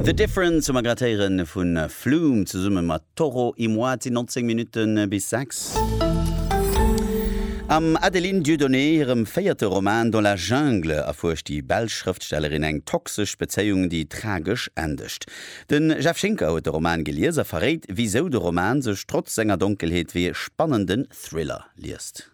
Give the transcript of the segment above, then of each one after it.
The Difference hu mer grad héieren vu Flume zesumme mat Toro y Moi, et sinn 19 Minutten bis 6. Am Adeline Dieudonné hirem véierte Roman Dans la Jungle erfuerscht déi belsch Schrëftstellerin eng toxesch Bezéiung, déi tragesch endegt. De Jeff Schinker huet de Roman gelies a verréit, wisou de Roman sech trotz senger Donkelheet wéi ee spannenden Thriller liest.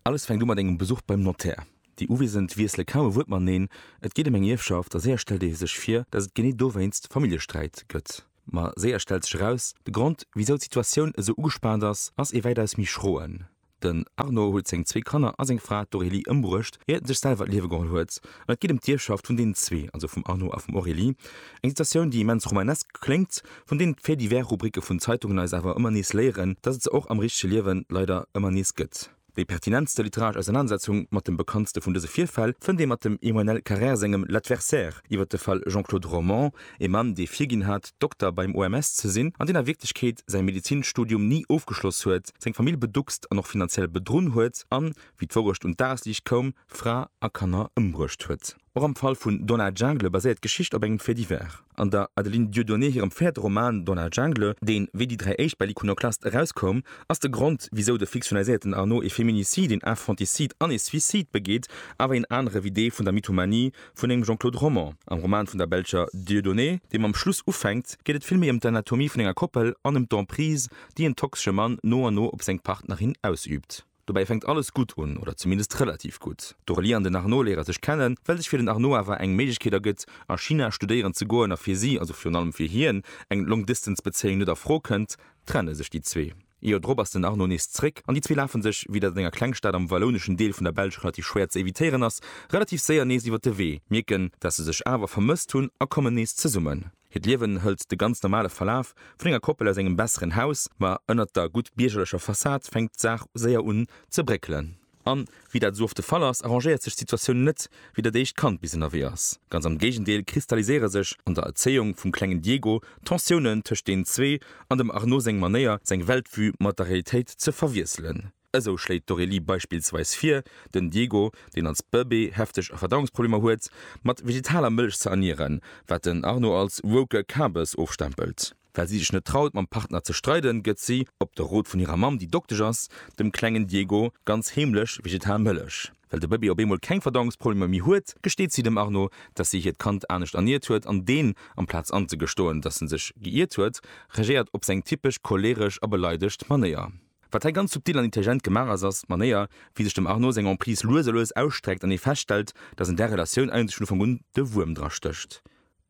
Alles fänkt u mat engem Besuch beim Notär. Déi Uwesend wiessele kaum e Wuert mateneen, et geet ëm eng Ierfschaft a séier stellt ee sech vir, datt et genee dowéinst Familljesträit gëtt. Ma séier stellt sech eraus, de Grond, wisou d'Situatioun esou ugespaant ass, ass ee wäitaus méi schroen. Den Arno huet seng zwee Kanner a seng Fra, d'Aurélie, ëmbruecht, iert en sech selwer d'Liewe geholl huet. An et geet ëm d'Ierfschaft vun deenen zwee, also vum Arno a vum Aurélie. Eng Situatioun, déi immens romanesk kléngt, vun deenen d'Faits-divers-Rubricke vun Zeitungen eis awer ëmmer nees léieren, dass et se och am richtege Liewen leider ëmmer nees gëtt. Déi pertinentste literaresch Ausernanersetzung mat dem bekanntste vun dëse Virfäll fënnt ee mat dem Emmanuel Carrère sengem L'Adversaire iwwer de Fall Jean-Claude Romand, ee Mann, dee virginn hat, Dokter beim OMS ze sinn, an deen a Wierklechkeet säi Medezinstudium ni ofgeschloss huet, seng Famill beduckst an och finanziell bedrunn huet an, wéi d'Wourecht un d'Dagesliicht koum, Fra a Kanner ëmbruecht huet. Och am Fall vun Dans la Jungle baséiert d'Geschicht op engem Fait divers. An der Adeline Dieudonné hirem véierte Roman Dans la Jungle, deen wéi déi dräi éischt bei l'Iconoclaste erauskoum, ass de Grond, wisou de fiktionaliséierten Arnaud ee Féminicide, een Infanticide an ee Suicide begeet, awer een anere wéi dee vun der Mythomanie vun engem Jean-Claude Romand. Am Roman vun der belscher Dieudonné, dee mam Schluss ufänkt, geet et vill méi ëm d'Anatomie vun enger Koppel an ëm d'Emprise, déi en toxesche Mann no an no op seng Partnerin ausüübt. Dobäi fänkt alles gutt un, oder zumindest relativ gutt. D'Aurélie an den Arnaud léiere sech kennen, well sech fir den Arnaud awer eng Méiglechkeet ergëtt, a China studéieren ze goen, a fir si, also virun allem fir hien, eng Long-Distance-Bezéiung net a Fro kënnt, trenne sech déi zwee. Joer drop ass den Arnaud nees zeréck, an déi zwee lafe sech, wéi dat an enger Klengstad am wallouneschen Deel vun der Belsch relativ schwéier ze evitéieren ass, relativ séier nees iwwer de Wee, mierken, dat se sech awer vermësst hunn, a kommen nees zesummen. Hiert Liewen hëlt de ganz normale Verlaf vun enger Koppel aus engem besseren Haus, ma ënnert der gutt biergerlecher Fassad fänkt d'Saach séier un ze bréckelen. An, wéi dat esou oft de Fall ass, arrangéiert sech d'Situatioun net, wéi dat éischt Kand bis ënnerwee ass. Ganz am Géigendeel, kristalliséiere sech an der Erzéiung vum klengen Diego Tensiounen tëscht deenen zwee an dem Arnaud seng Manéier, seng Weltvue mat der Realitéit ze verwiesselen. Esou schléit d'Aurélie beispillsweis vir, den Diego, deen als Bëbee hefteg Verdauungsproblemer huet, mat vegetaler Mëlch ze ernieren, wat den Arno als woke Kabes ofstempelt. Well si sech net traut, mam Partner ze streiden, gëtt si, op de Rot vun hirer Mamm, déi Doktesch ass, dem klengen Diego ganz heemlech vegetal Mëlech. Well de Bëbee op eemol keng Verdauungsproblemer méi huet, gesteet si dem Arno, dass si hiert Kand anescht erniert huet an deen, amplaz anzegestoen, dass en sech geiert huet, regéiert op seng typesch choleeresch a beleidegt Manéier. Wat hei ganz subtil an intelligent gemaach ass, ass d'Manéier, wéi sech dem Arnaud seng Emprise lues a lues ausstreckt an ee feststellt, datt an där Relatioun eigentlech vun Ufank un de Wuerm dra stécht.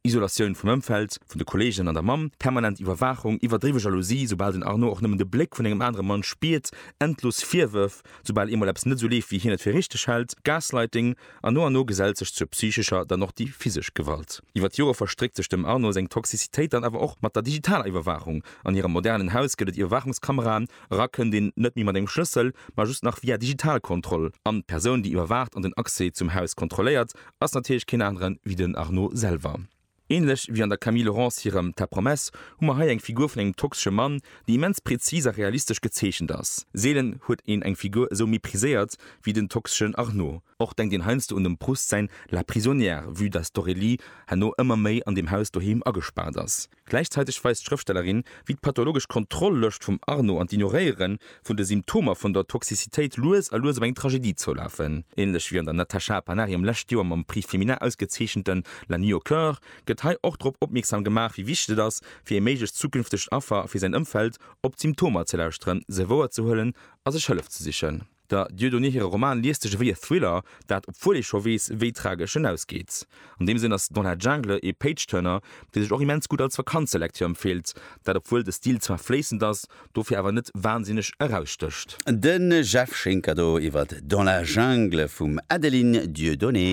Isolatioun vum Ëmfeld, vun de Kolleegen an der Mamm, permanent Iwwerwaachung, iwwerdriwwe Jalousie, soubal den Arnaud och nëmmen de Bléck vun engem anere Mann spiert, endlos Virwërf, soubal eemol eppes net esou leeft, wéi hien et fir richteg hält, Gaslighting, An no an no gesellt sech zur psychescher dann och déi physesch Gewalt. Iwwer d'Jore verstréckt sech dem Arnaud seng Toxicitéit dann awer och mat der digitaler Iwwerwaachung. An hirem modernen Haus gëtt et Iwwerwaachungskameraen. Era kënnt een net méi mat engem Schlëssel, ma just nach via Digitalkontroll. An d'Persoun, déi iwwerwaacht an den Accès zum Haus kontrolléiert, ass natierlech keen anere wéi den Arnaud selwer. Ähnlech wéi an der Camille Laurence hirem Ta promesse hu mer hei eng Figur vun engem toxesche Mann, déi immens präzis a realistesch gezeechent ass. Seelen huet een eng Figur esou mépriséiert wéi den toxeschen Arnaud. Och denkt een heiansdo un dem Proust säin La prisonnière, vue dass d'Aurélie herno ëmmer méi an deem Haus doheem agespaart ass. Gläichzäiteg weist d'Schrëftstellerin, wéi d'pathologesch Kontroll-Lëscht vum Arnaud an d'Ignoréiere vun de Symptomer vun der Toxicitéit lues a lues op eng Tragedie zoulafen. Ähnlech wéi an der Natasha Panariem lescht Joer mam Prix Femina ausgezeechenten La Nuit au Coeur gëtt hei och drop opmierksam gemaach, wéi wichteg et ass, fir ee méiglecht zukünftegt Affer a fir säin Ëmfeld, op d'Symptomer ze lauschteren, se wouer ze huelen a sech Hëllef ze sichen. Der Dieudonné hire Roman liest sech ewéi e Thriller, dat, obwuel ee scho weess, wéi tragesch en ausgeet. An deem Sënn ass Dans la Jungle ee Page-Turner, dee sech och immens gutt als Vakanzelektür empfeelt, dat obwuel de Stil zwar fléissend ass, dofir awer net wansinneg erausstécht. De Jeff Schinker do iwwert Dans la Jungle vum Adeline Dieudonné.